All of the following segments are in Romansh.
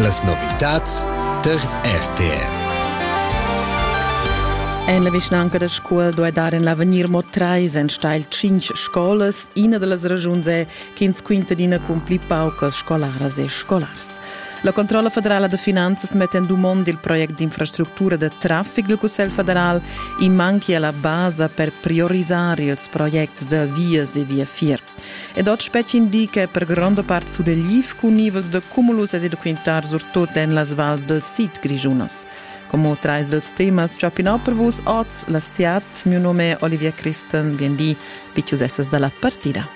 Las novitads tar RTR. En la vischnanca da Scuol doi dar en l'avegnir mo treis enstagl cinc scolas. Ina da las ragiuns è ch'ins quinta d'ina cun pli paucas scolaras e scolars. La Controlla federala da finanzas mette in dumond il proiect d'infrastruttura da traffic del Cussel federal in manchi alla basa per priorisare ils proiects da vias e via fier. Ed oz spetg indica per gronda part sudegliv cun nivels da cumulus e da quintar surtut en las vals dal sid grischunas. Como trais dels temas chapinau per vus oz la siat, mio nome è Olivia Christen, bien di, vicius essas dalla partida.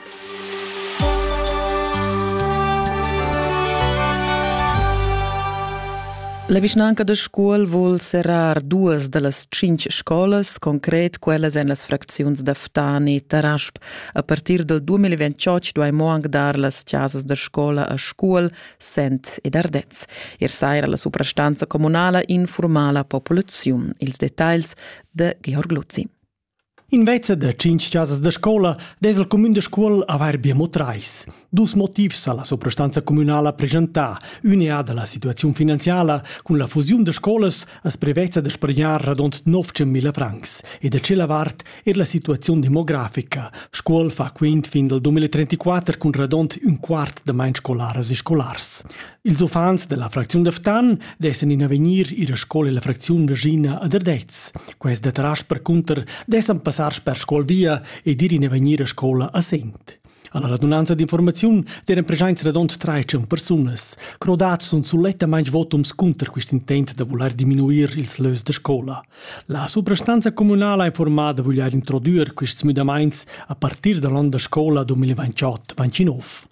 La vischnanca da Scuol vul serrar duas da las cinc scolas, concret quellas en las fracziuns da Ftani, Tarasp, A partir dal 2028 duai mo anc dar las chasas da scola a Scuol, Sent ed Ardez. Ier saira la suprastanza communala informa la populaziun. Ils detagls da Georg Luzzi. Invece da cinc chasas da scola des il cumün de Scuol avair bia mo treis. Dus motivs ha la suprastanza communala preschentà. Ün è da la situaziun finanziala. Cun la fusiun da scolas as prevezza da spargnar radont 900.000 francs e da tschella vart er la situaziun demografica. Scuol fa quint fin dal 2034 cun radont ün quart da main scolaras e scolars. Ils uffants della fracziun da Ftan dessen in avegnir ir a scola la fracziun Virginia ad Ardez. Quest da tras percunter dessen passar sper scuol via ed ir in avegnir a scola a Sent. Alla radunanza d'informaziun deren presenza radont traitschun persunas. Crodats sun sulettamain votums cunter quest intent da voler diminuir ils lös da scola. La suprastanza communala ha informada voglier introdüer quests müdamaints a partir da l'on da scola 2028-29.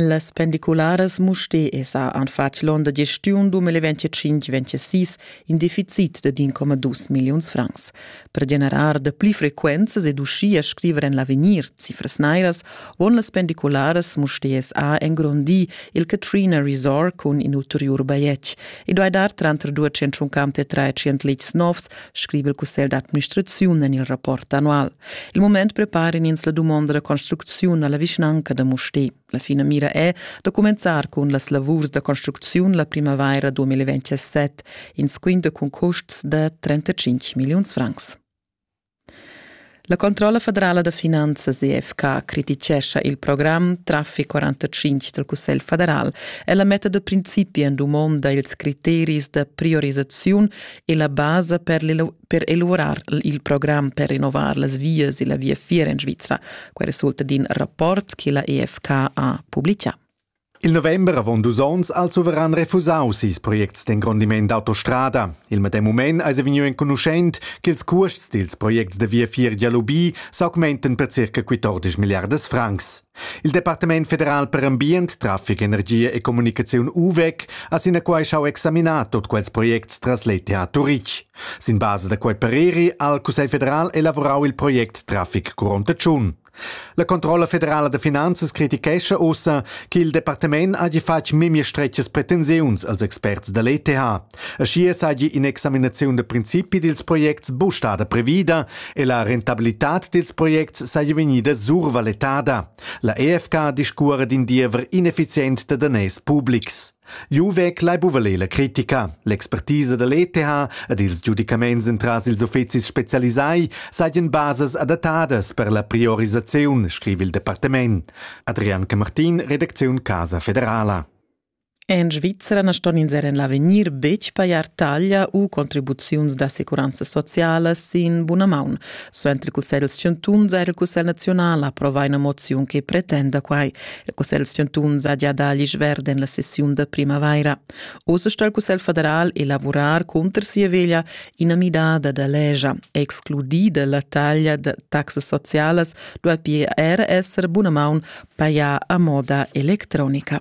Las pendicularas Musté esa an fatg l'on da gestiun 2025-26 in deficit de 1,2 milliuns francs. Per generar da pli frequenzas ed uschia scriver en l'avegnir cifras nairas von las pendicularas Mustérs A engrondir il Katrina Resort cun in ulteriur bajetg. I duai dar tranter 253 litgs novs, scrive il cussegl d'administraziun en il rapport annual. Il moment prepara in ins la dumonda da construcziun alla vischnanca da Musté. La finamira è da cumenzar cun las lavurs da construcziun la primavaira 2027, in squinda cun custs da 35 milliuns francs. La controlla federala da finanzas EFK criticescha il program Traffic 45 dal Cussegl federal e la meta da principi en dumonda ils criteris da priorisaziun e la basa per per elaborar il program per rinnovar las vias e la viafier en Svizra. Quel resulta d'in rapport che la EFK ha publicà. Il november avon dus onns ha il suveran refusau ses projects d'engrondiment d'autostrada. Il medem mument eis vegniu enconuschent ch'ils cuosts dils projects da viafier Dialubi s'augmenten per circa 14 milliardas francs. Il Departament federal per ambient, traffic, energia e comunicaziun UVEC ha sinaquai schau examinar tot quels projects tras l'ETH Turitg. Sin basa da quei pareri ha il Cussegl federal elavorau il project Traffic Curonta Tschun. La controlla federala da finanzas critichescha ussa che il departament hagi fatg memia stretgas pretensiuns als experts da l'ETH. Aschia seigi in'examinaziun da principi dils projects bustada previda e la rentabilitad dils projects seigi vegnida survaletada. La EFK discuora d'in diever ineffizient da daners publics. Jeu vegl ei buca ler la critica. L'expertisa da l'ETH ed ils giudicaments entras ils uffecis specialisai seigien basas adattadas per la priorisaziun, scriva il departament. Adrian Camartin, redacziun Casa Federala. En Svizzera na ston ins er en l'avegnir betg pajar taglia u contribuziuns d'assicuranza sociala sin buna maun. Suenter il Cussegl chantuns ha il Cussegl naziunal approvà ina moziun che pretenda quai. Il cussegl chantun saja da l'isch verd en la sessiun da primavaira. Oz sto il cussegl federal elavurar cunter sia veglia ina midada da legia. Excludida la taglia da taxas socialas duai pia er esser bunamaun pajà a moda electronica.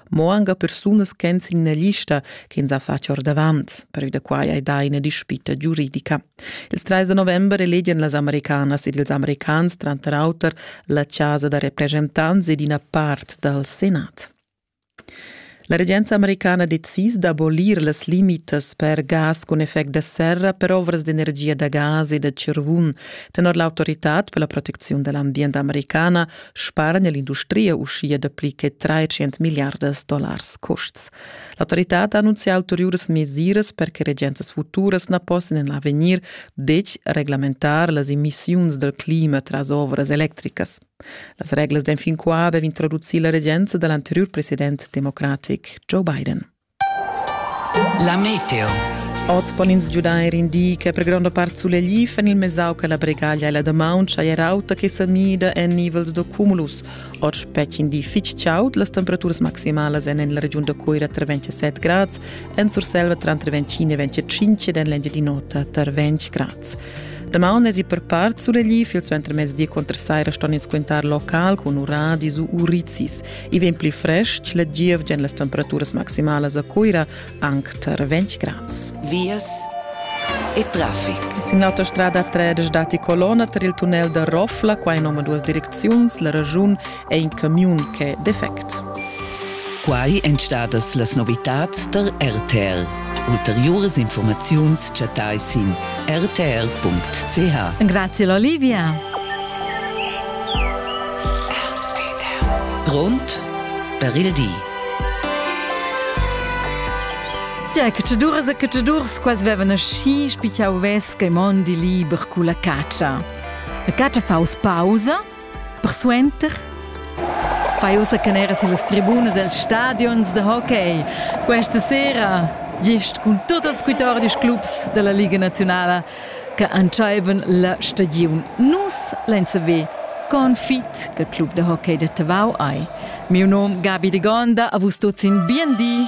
mo anche persunas ch'en sin la lista che ins ha fatg ordavant, pervi da quai hai dà ina dispita giuridica. Il 3 novembre elegian las americanas ed ils americans tranter auter la chasa da representanti ed ina part dal Senat. La regenza americana decis d'abolir las limitas per gas cun effect da serra per ovras d'energia da gas e da cirvun tenor l'autoritad per la protecziun dell'ambient americana spargna l'industria uschia dapli che 300 milliardas dollars custs. L'autoritad ha annunzià ulteriuras mesiras per che regenzas futuras na possan en l'avegnir betg reglamentar las emissiuns dal clima tras ovras electricas. Las reglas d'enfin qua dev introducir la regenza da l'anteriur president democratic Joe Biden. La meteo. Oz pon ins giudair in di che per gronda part sulegl en il mesau che la bregaglia e la damaun schaier auta che sa mida en nivels da cumulus. Oz spechin di fitg chaud, las temperaturas maximalas en la regiun da Coira tra 27 grads, en Surselva tra 25 e 25 ed en l'Engiadin'Ota tra 20 grads. Damaun es i per part sulegli, il suentermezdi contra saira ston ins quintar local con uradi su urizis. I vegn pli frestg la gievgia en las temperaturas maximalas a Cuira anc tar 20 grads. Vias e traffic. Sin l'autostrada 3 datti colonna tar il tunnel da Rofla, qua in omaduas direcziuns, la ragiun è in camiun ch'è defect. Quai èn stadas las novitads tar RTL. Ulteriuras informaziuns chattai sin rtl.ch. Grazie Olivia. Grond per il di. Già cacciaduras e cacciadurs quels vevan aschi spichau vess che mondi liber cu la catscha. La catscha faus pausa, persuenter fai ussa canera sillas tribunas els stadions da hockey. Questa sera gest cun tot els quatordisch clubs dalla Liga Nazionala che entscheivan la stagiun. Nus lein saver con fit che club de hockey de Tavau ei. Miu nom Gabi de Gonda, a vus tuts in bien di.